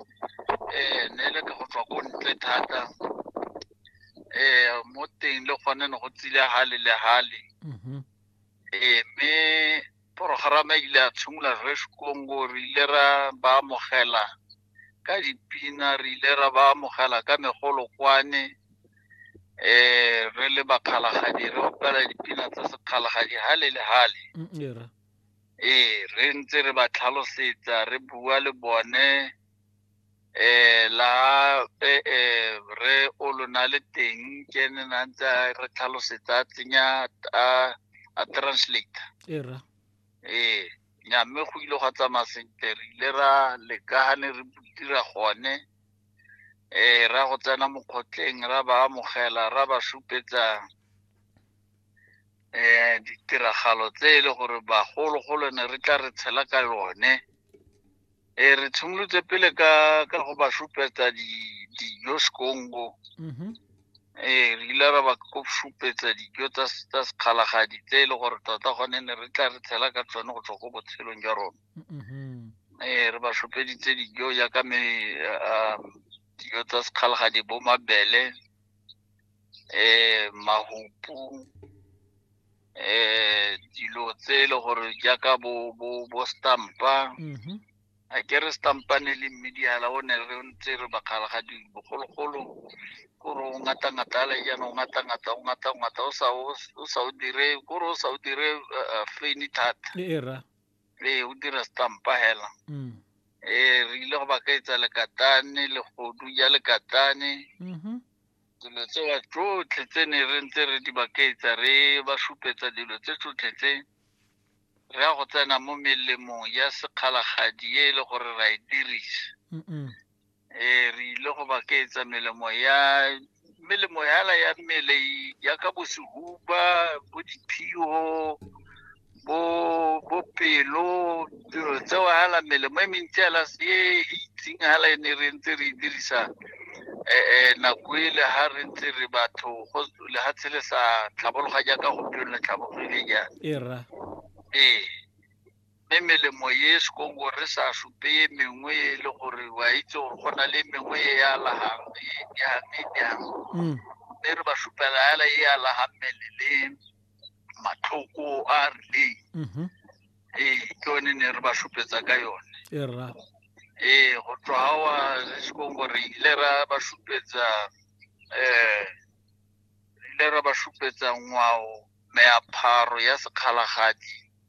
um ne le ka go tswa ko ntle thata um mo teng le gone ne go tsile hale le hale mm-hmm. ee mme porogerama e ile a tshimolola re sekongo re ile ra ba amogela ka dipina re ile ra ba amogela ka megolo kwane um re le bakgalagadi re opela dipina tsa sekgalagadi hale le hale mm, ee re ntse re ba tlhalosetsa re bua le bone eh la eh, eh re o lona le teng ke ne na ntse a re tlhalosetsa a tsenya a a translate e ra ee nya mme go ile gwa tsamaya sentle re ile ra leka ga ne re dira gone eh ra go tsena mokgotleng ra ba amogela ra ba supetsa um ditiragalo tse e le gore bagologolo ne re tla re tshela ka yone e re tshimolotse pele ka ka go ba supetsa dijo sekongo mm-hmm. ee re ile ra ba ko supetsa dijo tsa sekgalagadi tse e le gore tota gone ne re tla re tshela ka tsone go tswa ko botshelong jwa rona mm-hmm. ee re ba supeditse dijo jaaka me um, dijo tsa sekgalagadi bo mabele eh mahupu eh dilo tse e le gore jaaka bo bo bo stampa Mhm. a ke re stampane le mmediala o ne re ntse re bakgala ga di bogologolo kore o ngata ngata ale jaana o ngata ngata o ngata ngata o sa o o sa o dire kore o sa o dire eh, eh, feni thata E- era ee o dira stampa hela mm. ee re ile go ba ka etsa lekatane legodu ja lekatane mm-hmm. dilo tsewa tsotlhe tse ne re ntse re di bakaetsa re ba supetsa dilo tse tsotlhe tse re ya go tsena mo melemong ya sekgalagadi e e le gore ra e dirisa eh re ile go ba keetsa melemo ya melemo yala ya mmele ya ka bosehuba bo diphiyo bo bo pelo dilo tseo hala melemo e mentsi yala e e itseng hala e ne re ntse re e dirisa eh nako ele ha re ntse re batho go lehatshe le sa tlhabologa jaaka gompieno le tlhabologile jaana e ra ee mme melemo e e sekongo re sa supe e mengwe e le gore wa itse gore go na le mengwe e ya lagang e yang e yang mm. mme re ba supela fela e ya lagang mmele le matlhoko a rileng mm-hmm. ee ke yone ne re ba supetsa ka yone ee go tswa ga wa sekongo re ile ra ba supetsa um re ile ra ba supetsa ngwao meapharo ya sekgalagadi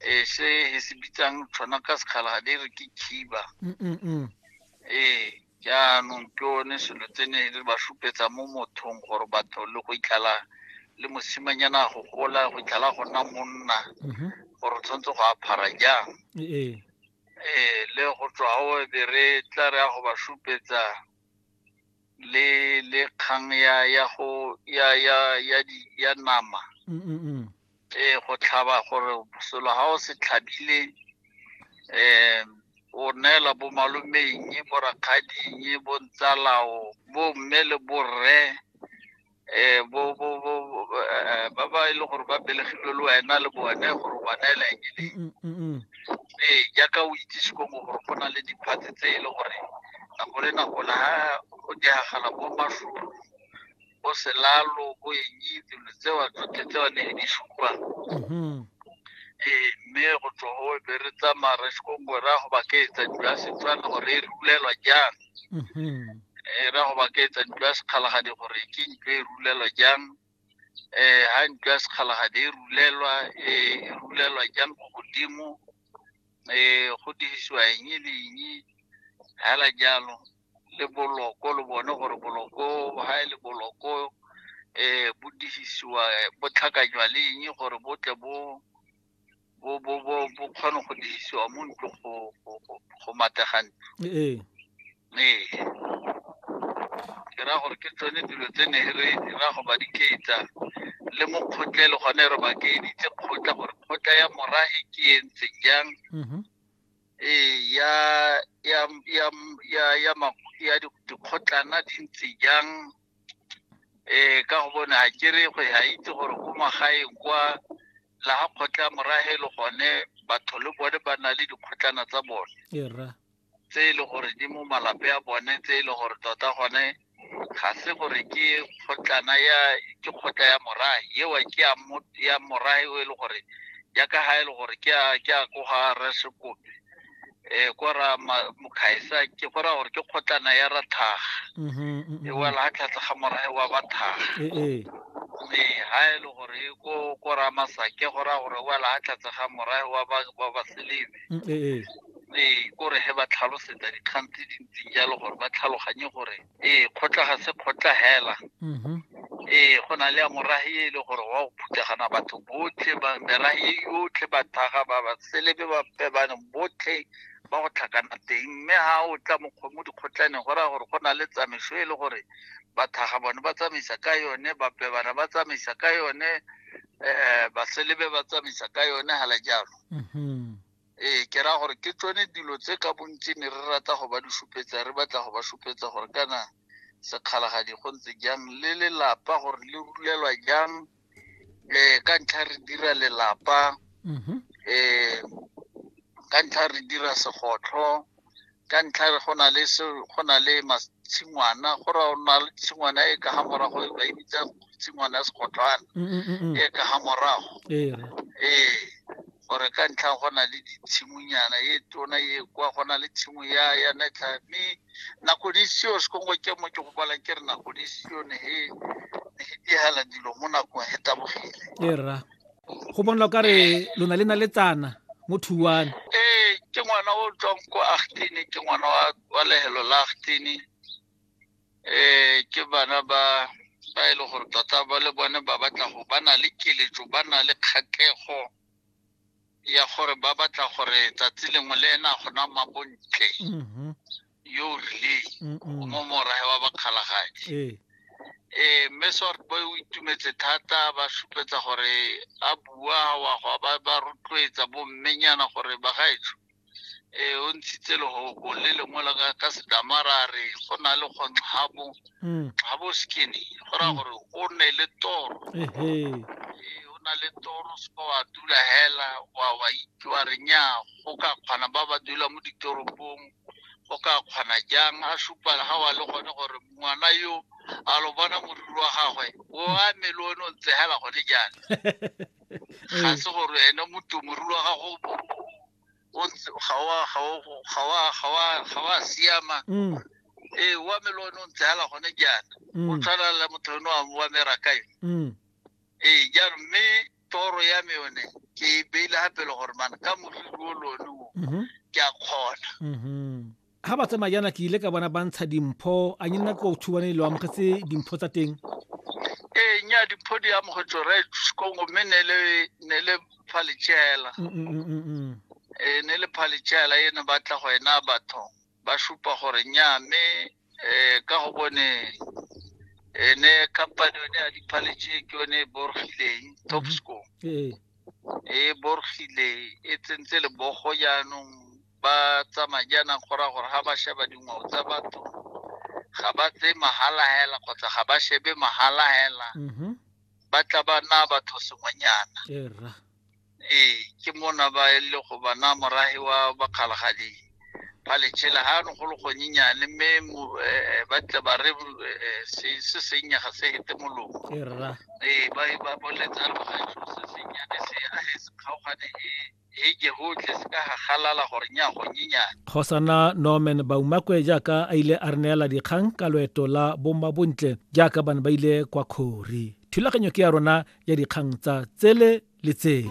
eh se he se bitsang tshwana ka sekgala ga dire ke khiba ee jaanong ke one selo tse ne le ba supetsa mo mothong gore batho le go itlhala le mosimanyana go gola go itlhala go nna monna mm-hmm. gore tshwanetse go aphara jang ee le go tswa o be re tla re ya go ba supetsa le le kgang ya ya go ya ya ya di ya nama mm, mm, mm. eh go tlhaba gore selo ha o se tlhabile eh o neela bo malomeng bo rakgading bo ntsalao bo mme le borre eh, bo bo bo bo- eh, ba ba e leng gore ba belegilwe le wena le bone gore ba neela eng e Mm, mm, mm. ee jaaka o itsise ko mo gore go na le diphatse tse e le gore nako le nako la ha go diragala bo mašoro bo selalo bo eng dilo tseo tsotlhe tseo ne di supa Mhm. ee mme go tswa go be re tsamaya re se ko ngwe ra go ba ke etsa dilo ya setswana gore e rulelwa jang e ra go ba ke etsa ntlo ya sekgalagadi gore ke ntlo e rulelwa jang um ha ntlo ya sekgalagadi e rulelwa e rulelwa jang ko godimo um go dirisiwa eng le eng hela jalo le boloko le bone gore boloko ha e le boloko um bo dirisiwa bo tlhakanywa le eng gore bo tle bo bo bo bo bo kgone go dirisiwa mo ntlo go go go mategane ee ee ke ra gore ke tsone dilo tse ne re ra go ba diketsa le mo kgotlele gone re ba keeditse kgotla gore kgotla ya morahe ke e ntse jang mhm. ee ya ya ya ya ya dikgotlana di ntse jang um ka go bone a kere go a itse gore ko magaeng kwa la ga kgotla morahe le gone batho le bone ba na le dikgotlana tsa bone tse e le gore di mo malape a bone tse e le gore tota gone ga se gore ke kgotlana ya ke kgotla ya morahe eo ke ya morahe o e le gore ya ka ga e le gore ke a ko ga resekope eh ko ra ma- mokgaisa ke go raya gore ke kgotlana ya ra thaga Mhm, mhm, e mhm. wela ga tlhatlha ga morae wa ba thaga Eh, eh. mme ga e le gore e ko ko ra masake go raya gore e wela ga tlhatlha ga morae wa ba wa ba selebe Mm, eh, eh. mme ko re he ba tlhalosetsa dikgang tse dintseng jalo gore ba tlhaloganye gore ee kgotla ga se kgotla hela mhm. ee go na le ya morahi e le gore wa go phuthagana batho botlhe merahi e yotlhe bathaga ba ba selebe ba pebane botlhe ba go tlhakana teng mme ga o tla mo dikgotlaneng go raya gore go na le tsamaiso e le gore bathaga bone ba tsamaisa ka yone bapebana ba tsamaisa ka yone um baselebe ba tsamaisa ka yone hala jalo mhm. Ee, ke raya gore ke tsone dilo tse ka bontsi ne re rata go ba di supetsa re batla go ba supetsa gore kana sekgalagadi go ntse jang le lelapa gore le rulelwa jang um ka ntlha re dira lelapa um ka ntlha re dira segotlho ka ntlha re go na le se go na le tshingwana go ra ona le tshingwana e ka ga morago e ba e bitsa tshingwana ya segotlwana mm, mm, mm, e ka ga morago ee gore ka ntlha go na le ditshimonyana e tona e kwa go na le tshimo ya ya netlha mme nako di seo sekongo ke mo ke go bala ke re nako di seo ne e ne e dihela dilo mo nakong e tabogile e rra go bonla o kare lona le na le tsana mo thuane ee ke ngwana o tswang ko agtene ke ngwana wa lehelo la agtene um ke bana ba ba e le gore tota ba le bone ba batla go ba na le keletso ba na le kgatlego ya gore ba batla gore tsatsi lengwe le ena gona mabontle mm-hmm. yo o rileng o mo morahe wa bakgalagadi ee eh, mme sort boy o itumetse thata ba supetsa gore a bua wa go ba ba rotloetsa bommenyana gore bagaetsho e o ntshitse legogo le lengwe la ka sedamara a re go na le kgontlhabo mm. tlhabo skinny go raya mm. gore o ne le toro o na le toro seka wa dula hela wa wa itse wa re nya go ka kgona ba ba dula mo ditoropong o ka kgona jang a supa ga wa le gone gore ngwana yo a lo bona moriri wa gagwe o a mele o ne o ntsegela gone jang ga se gore ene motho moriri wa gago ga wa siama mm. ee wa mele o ne o ntsegela gone jana o mm. tshwana le motho o ne wa mera kae mm. ee jaanong mme toro ya me yone ke e beile gape le gore mana ka moriri o lone o mm-hmm. ke a kgona ga mm-hmm. ba tsamaya jaana ke ile ka bona ba ntsha dimpho a nye nna ko thubane e lo amogetse dimpho tsa teng ee nya dimpho di amogetse re kongo mme ne le phalejela mm, mm, mm, ee ne le phalejela e ne batla go ena batho ba supa gore nnyaa mme um ka go bone ene company yone ya diphaletše ke yone e borgileng mhm. topsco ee. e borgile e tsentse lebogo jaanong ba tsamaya jaanang gora gore ga ba sheba dingwao tsa batho ga ba tse mahala hela kgotsa ga ba shebe mahala hela mhm. ba tla ba na batho sengwenyana Ee, ke mona ba e le go bana morahi wa bakgalagadi ba letšhela ga no go le gonyenyane mme eh, ba tle ba re eh, se se sennye ga se hete molomo ee ba e ba boletsa logaso se sennyane se a he se kgaogane e e ke gotlhe se ka gagalala gore nya gonyenyane kgosana norman baumakwe jaaka a ile a re neela dikgang ka loeto la bomma bontle jaaka bane ba ile kwa kgori thulaganyo ke ya rona ya dikgang tsa tsele le tsele